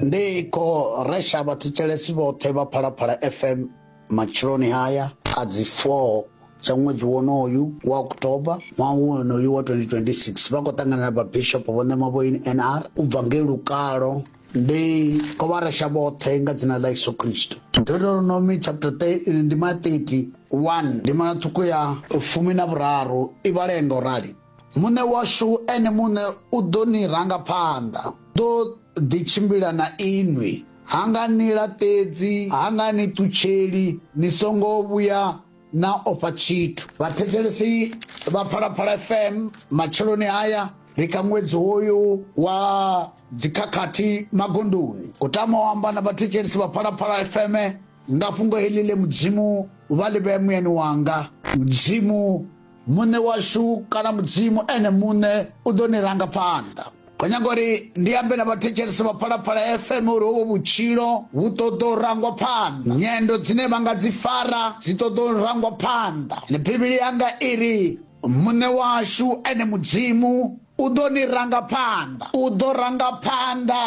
ndi kho resha vhathetshelesi vhoṱhe vha phalaphala fm matsheloni haya a dzi 4 dza ṅwedzi wonoyu wa oktoba ṅwaha wonoyu wa 2026 vha khou ṱangana na vhabishop vho ṋema vho nr u bva ngei lukalo ndi kho vha resha vhoṱhe nga dzina ḽa yesu kristo deuteronomy chapter 3 ndi ma 30 1 ndi mana ṱhukhu ya fumi na vhuraru i vhalea nga u rali Muṋe washu ene muṋe u ḓo ni ranga phanḓa, ḓo ḓi tshimbila na inwi, ha nga ni laṱedzi, ha nga ni ṱutsheli, ni songo vhuya na ofha tshithu. Vhathetshelesi vha Phalaphala FM matsheloni haya ri kha ṅwedzi hoyu wa dzikhakhathi magondoni. U tama u amba na vhathetshelesi vha Phalaphala FM nga fhungo heḽi ḽe Mudzimu vha ḽi vhea muyani wanga. Mudzimu muṋe washu kana mudzimu ene muṋe u ḓo ni ranga phanḓa kho nyaga uri ndi ambe na vhathetshelesi vha phalaphala fm uri hovho vhutshilo vhu ṱoḓa u rangwa phanḓa nyendo dzine vha nga dzi fara dzi ṱoḓa u rangwa phanḓa ende bivhili yanga iri muṋe washu ene mudzimu u ḓo ni ranga phanḓa u ḓo ranga phanḓa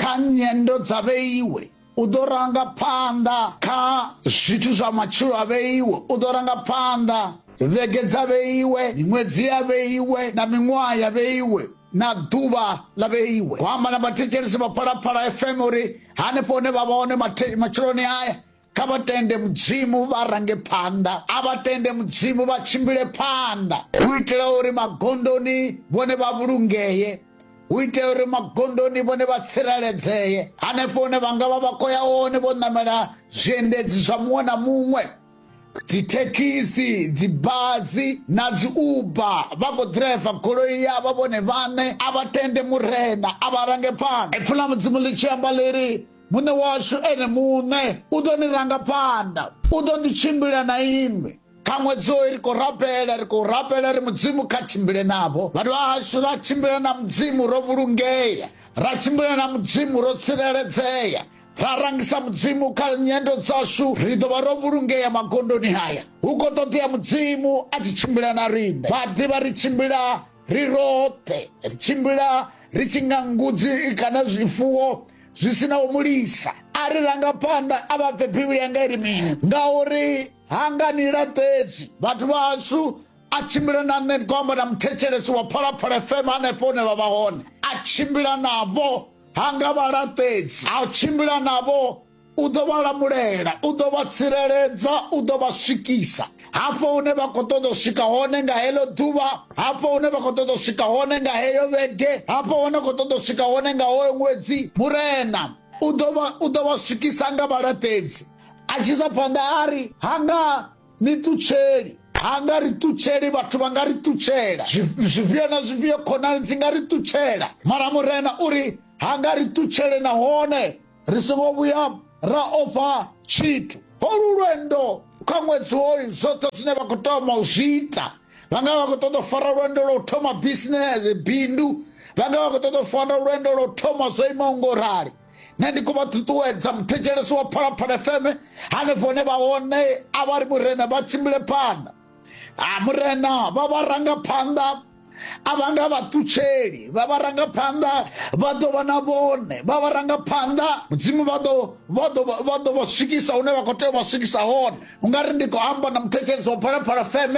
kha nyendo dza vheiwe u ḓo ranga phanḓa kha zwithu zwa matshilo a vheiwe u ḓo ranga phanḓa vhege dza vheiwe miṅwedzi ya vheiwe na miṅwaha ya vheiwe na ḓuvha ḽa vheiwe ho amba na vhathetshelesi vha phalaphala fm uri hanefho hune vha vha hone matsheloni aya kha vha tende mudzimu vha range phanḓa a vha tende mudzimu vha tshimbile phanḓa u itela uri magondoni vhone vha vhulungee u itela uri magondoni vhone vha tsireledzee hanefho hune vha nga vha vha khou ya hone vho ṋamela zwiendedzi zwa muṅwe na muṅwe dzithekhisi dzibazi na dzi uba vha khou ḓiraiva goloi yavha vhone vhaṋe a vha tende murena a vha range phanḓa ipfhi ḽa mudzimu ḽi tshi amba ḽiri muṋe washu ene muṋe u ḓo ni ranga phanḓa u ḓo ḓi tshimbila na inwi ṱhaṅwe dzo ri khou rabela ri khou rabela ri mudzimu kha tshimbile navho vhathu vha hashu ra tshimbila na mudzimu ro vhulungea ra tshimbila na mudzimu ro tsireledzea ra rangisa mudzimu kha nyendo dzashu ri ḓo vha ro vhulungea magondoni haya hu khou ṱoḓea mudzimu a tshi tshimbila na riṋe vha ḓivha ri tshimbila ri roṱhe ri tshimbila ri tshi nga ngudzi kana zwifuwo zwi si na u mulisa a ri ranga phanḓa a vha bve bivhili yanga i ri mini ngauri ha nga ni laṱedzi vhathu vhashu a tshimbila na nṋe ndi amba na muthetshelesi wa phalaphala fm hanefho hune vha vha hone a tshimbila navho ha nga vha laṱedzi a tshimbila navho u ḓo vha lamulela u ḓo vha tsireledza u ḓo vha swikisa hafho hune vha khou ṱoḓa u swika hone nga heḽo ḓuvha hafho hune vha khou ṱoḓa u swika hone nga heyo vhege hafho hune khou ṱoḓa u swika hone nga hoyo ṅwedzi murena u ḓo vha u ḓo vha swikisa nga vhalaṱedzi a tshi isa phanḓa a ri ha nga ni ṱutsheli ha nga ri ṱutsheli vhathu vha nga ri ṱutshela zwifhio na zwifhio khonani dzi nga ri ṱutshela mara murena u ri ha nga ri ṱutshele nahone ri songo vhuya ra ofha tshithu holu lwendo kha ṅwedzi hoyu zwoṱhe zwine vha khou toma u zwi ita vha nga vha khou ṱoḓa u fara lwendo lwa u thoma bisinese bindu vha nga vha khou ṱoḓa u fara lwendo lwa u thoma zwo imaho ngo rali nṋe ndi khou vha ṱuṱuwedza muthetshelesi wa phalaphala fm hanefho hune vha hone a vha ri murena vha tshimbile phanḓa a murena vha vha ranga phanḓa a vha nga vha ṱutsheli vha vha ranga phanḓa vha ḓo vha na vhone vha vha ranga phanḓa mudzimu vha ḓo vha ḓo vha ḓo vha swikisa hune vha khou tea u vha swikisa hone ungari ndi khou amba na muthetshelesi wa phalaphala fm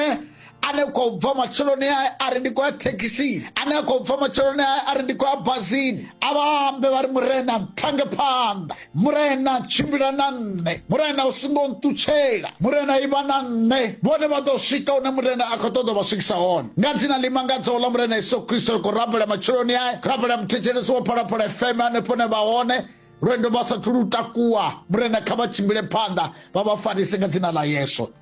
ane khou bva matsheloni ae a ri ndi khou ya thekhisini ane a khou bva matsheloni ae a ri ndi khou ya bazini a vha ambe vha ri murena nthange phanḓa murena tshimbila na nṋe murena u songo nṱutshela murena ivha na nṋe vhone vha ḓo swika hune murena a khou ṱoḓa vha swikisa hone nga dzina ḽi mangadzaho ḽa murena yesu kristo ri khou rabela matsheloni ae rabela muthetshelesi wo phalaphala fm hanefho ne vha hone lwendo vha sathu lu takuwa murena kha vha tshimbile phanḓa vha vha farise nga dzina ḽa yesu